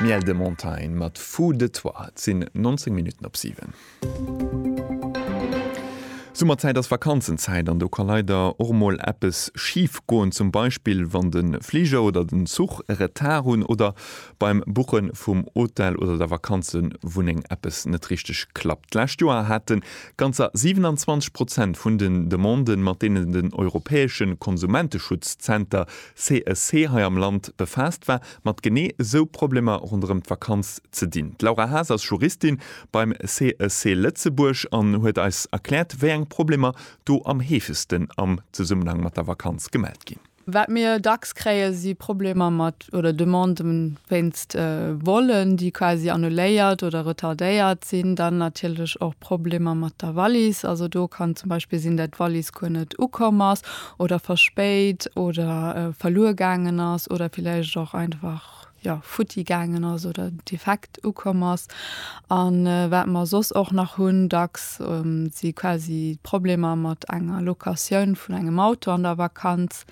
Miel de Montagne mat Fou de toi. Et sinn 19 Minutten op 7. Summerzäit ass Vakanzenzäit an do ka leider och mol eppes schif goen. Zum Beispill wann de Fliger oder den Zuch e Retard hunn oder beim Buche vum Hotel oder der Vakanzewunneng eppes net richteg klappt. D'lescht Joer hate ganzer 27 Prozent vun den Demanden, mat deenen den europäesche Konsumenteschutzzenter CSC hei am Land befaasst war, mat genee esou Problemer ronderëm d'Vakanz ze dinn. D'Laura Haas ass Juristin beim CSC Lëtzebuerg an huet eis erkläert, wéi eng Problemer do am heefegsten am Zesummenhang mat der Vakanz gemellt ginn. Wat mir dacks kréien, si Problemer mat oder Demandë wéinst Vollen, déi quasi annuléiert oder retardéiert sinn. Dann natierlech och Problemer mat der Wallis. Also do kann zum Beispill sinn, dat d'Wallis guer net ukomm ass oder verspéit oder verluer gaangen ass oder villäicht och einfach, jo, futti gaangen ass oder defekt ukomm ass. A wat mer soss och nach hunn dacks, si quasi d'Problemer mat enger Locatioun vun engem Auto an der Vakanz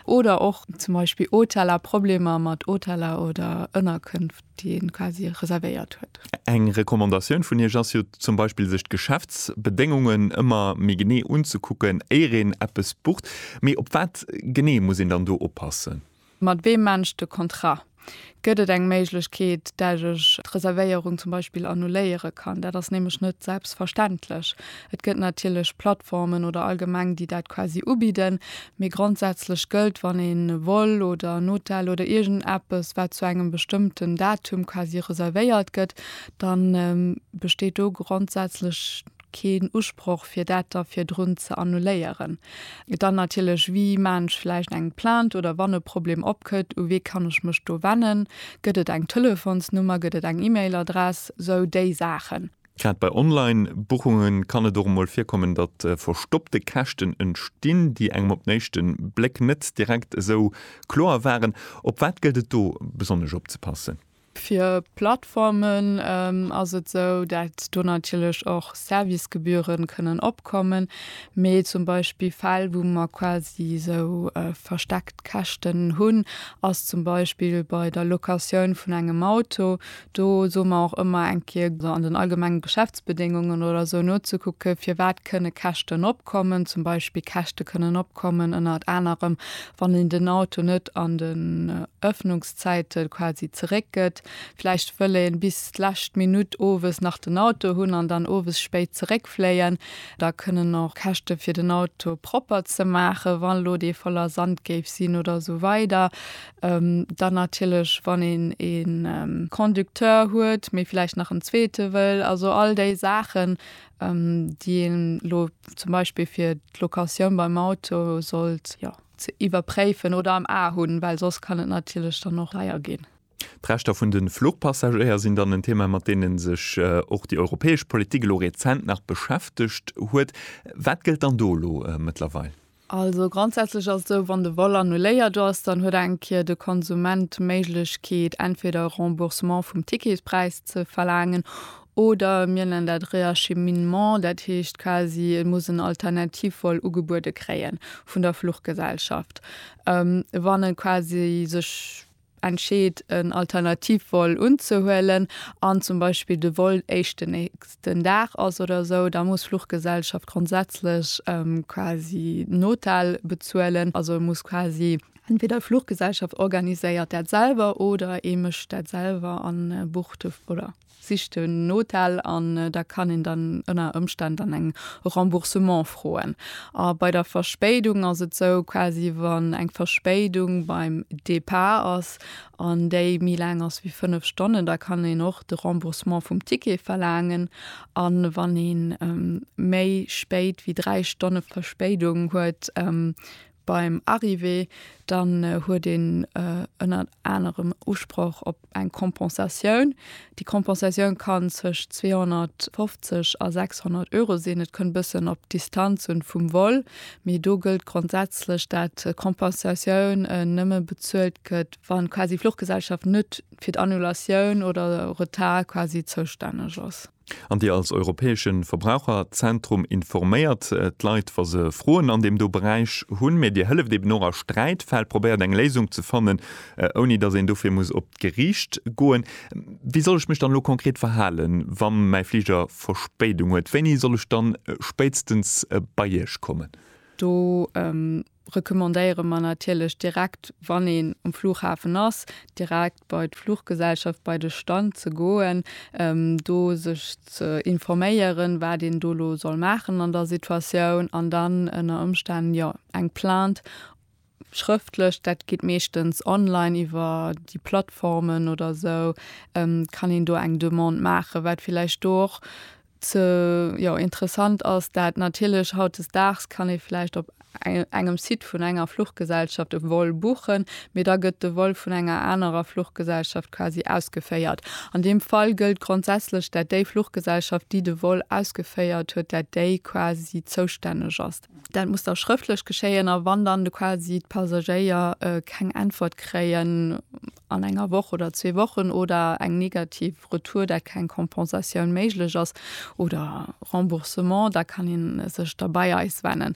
oder och zum Beispill Hoteller, Problemer mat Hoteller oder Ënnerkünft. déi een quasi reservéiert huet. Eng Recommandatioun vun Iech ass jo zum Beispill sech d'Geschäftsbedéngungen ëmmer méi genee unzekucken éier een eppes bucht. Mee op wat genee muss een dann do oppassen? Mat weem maan ech de Contrat? Gëtt et eng Méiglechkeet dat ech d'Reservéierung zum Beispill annuléiere kann? Dat ass nämlech net selbstverständlech. Et gëtt natierlech Plattformen oder allgemeng, déi dat quasi ubidden, mee grondsätzlech gëllt, wann een e Vol oder en Hotel oder iergendeppes, wat zu engem bestëmmten Datum quasi reservéiert gëtt, da besteet do grondsätzlech keen Usproch, fir dat da virdrun ze annuléieren. Dann natierlech, Wie maachen ech vläicht eng Plainte oder wann e Problem opkëtt, u wee kann ech mech do wennen? Gëtt et eng Telefonsnummer? Gëtt et eng E-Mail-Adress? Sou déi Saachen. Grad bei Online-Buchunge kann et och emol virkommen, datt verstoppte Käschten entstinn, déi engem op den éischte Bléck net direkt esou kloer waren. Op wat gëllt et do besonnesch opzepassen? Fir Plattformen ass et esou, datt do natierlech och Servicegebühren kënnen opkommen, mee zum Beispill Fäll, wou mer quasi esou versteckt Käschten hunn, ass zum Beispill bei der Locatioun vun engem Auto, Do soe mer och ëmmer, eng Kéier an den allgemenge Geschäftsbedéngungen oder esou nozekucke firwat kënne Käschten opkommen. Zum Beispill Käschte kënnen opkommen ënnert anerem, wann een den Auto net an den Öffnungszäite quasi zeréck gëtt. Vläicht wëll ee bis d'lescht Minutt owes nach den Auto hunn an dann owes spéit zeréckfléien. Da kënnen och Käschte fir den Auto propper ze maachen, wa lo dee voller Sand géif sinn oder esou weider. Dann natierlech wann een ee Conducteur huet, mee vläicht nach en zweete wëll. Also all déi Saachen, déi een elo zum Beispill fir d'Locatioun beim Auto sollt, jo, ze iwwerpréifen oder am A hunn, well soss kann et natierlech dann och deier ginn. D'Rechter vun de Fluchpassagéier sinn dann en Thema, mat deene sech och déi europäesch Politik elo rezent nach beschäftegt huet. Wat gëllt dann do elo mëttlerweil? Also grondsätzlech ass et esou, wann de Vol annuléiert ass, dann huet eng Kéier de Konsument d'Méiglechkeet, entweder e Remboursement vum Ticketspräis ze verlaangen oder mir nennen dat Reacheminement, dat heescht quasi e muss en Alternativvol ugebuede kréien vun der Fluchgesellschaft, wann e quasi sech. entscheet en Alternativvol unzehuelen an zum Beispill de Vol éischt den nächsten Dag ass oder esou, da muss d'Fluchgesellschaft grondsätzlech quasi Notel bezuelen. Also e muss quasi entweder d'Fluchgesellschaft organiséiert dat selwer oder ee mécht dat selwer a bucht de oder. Sicht en Hotel an da kann een dann ënner Ëmstänn dann eng Remboursement froen. A bei der Verspéidung ass et sou, quasi wann eng Verspéidung beim Départ ass an déi méi laang ass wéi 5 Stonnen, da kann een och de Remboursement vum Ticket verlaangen. A wann ee méi spéit wéi 3 Stonne Verspéidung huet, Beim Arrivé dann huet een ënnert anerem Usproch op eng Kompensatioun. Déi Kompensatioun kann tëscht 250 a 600 Euro sinn. Et kënnt e bëssen op d'Distanz un vum Vol, mee do gëllt grondsätzlech, dat d'Kompensatioun nëmme bezuelt gëtt, wann quasi d'Fluchgesellschaft net fir d'Annulatioun oder Retard quasi zoustänneg ass. An Dir als europäesche Verbraucherzentrum informéiert d'Leit, wa se Froen an deem do Beräich hunn, mä Dir hëlleft eben och a Sträitfäll, probéiert eng Léisung ze fannen, ouni datt een dofir muss op d'Gericht goen. Wéi soll ech mech dann elo konkret verhalen, wa mäi Fliger Verspéidung huet? Wéini soll ech dann spéitstens bei Iech kommen? Do recommandéiere mer natierlech direkt, wann een um Flughafen ass, direkt bei d'Fluggesellschaft, bei de Stand ze goen, do sech ze informéieren, wat een do elo soll maachen an der Situatioun an dann ënner Ëmstänn, jo, eng Plainte schrëftlech, dat geet meeschtens online iwwer déi Plattformen oder esou, kann een do eng Demande maachen, wat villäicht do och ze jo interessant ass dat natierlech hautdesdaags kann ee vläicht op engem Site vun enger Fluchgesellschaft e Vol buchen, mee da gëtt de Vol vun enger anerer Fluchgesellschaft quasi ausgeféiert. An deem Fall gëllt grondsätzlech dat déi Fluchgesellschaft déi de Vol ausgeféiert huet, dat déi quasi zoustänneg ass. Dat muss da schrëftlech geschéien a wann dann quasi d'Passagéier keng Äntwert kréien an enger Woch oder zwee Wochen oder eng negativ Retour, dat keng Kompensatioun méiglech ass, oder Remboursement, da kann ee sech da bei eis wennen.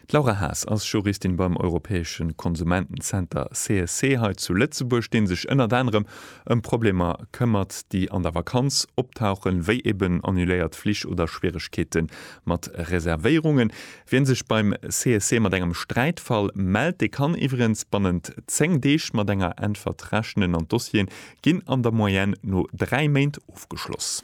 D'Laura Haas ass Juristin beim europäesche Konsumentenzenter CSC hei zu Lëtzebuerg, dee sech ënnert anerem ëm Problemer këmmert, déi an der Vakanz optauchen, wéi eben annuléiert Flich oder Schwieregkeete mat Reservéierungen. Wien sech beim CSC mat engem Sträitfall mellt, dee kann iwwerens bannent 10 Deeg mat enger Äntwert rechnen an d'Dossieren ginn an der Moyenne no 3 Méint ofgeschloss.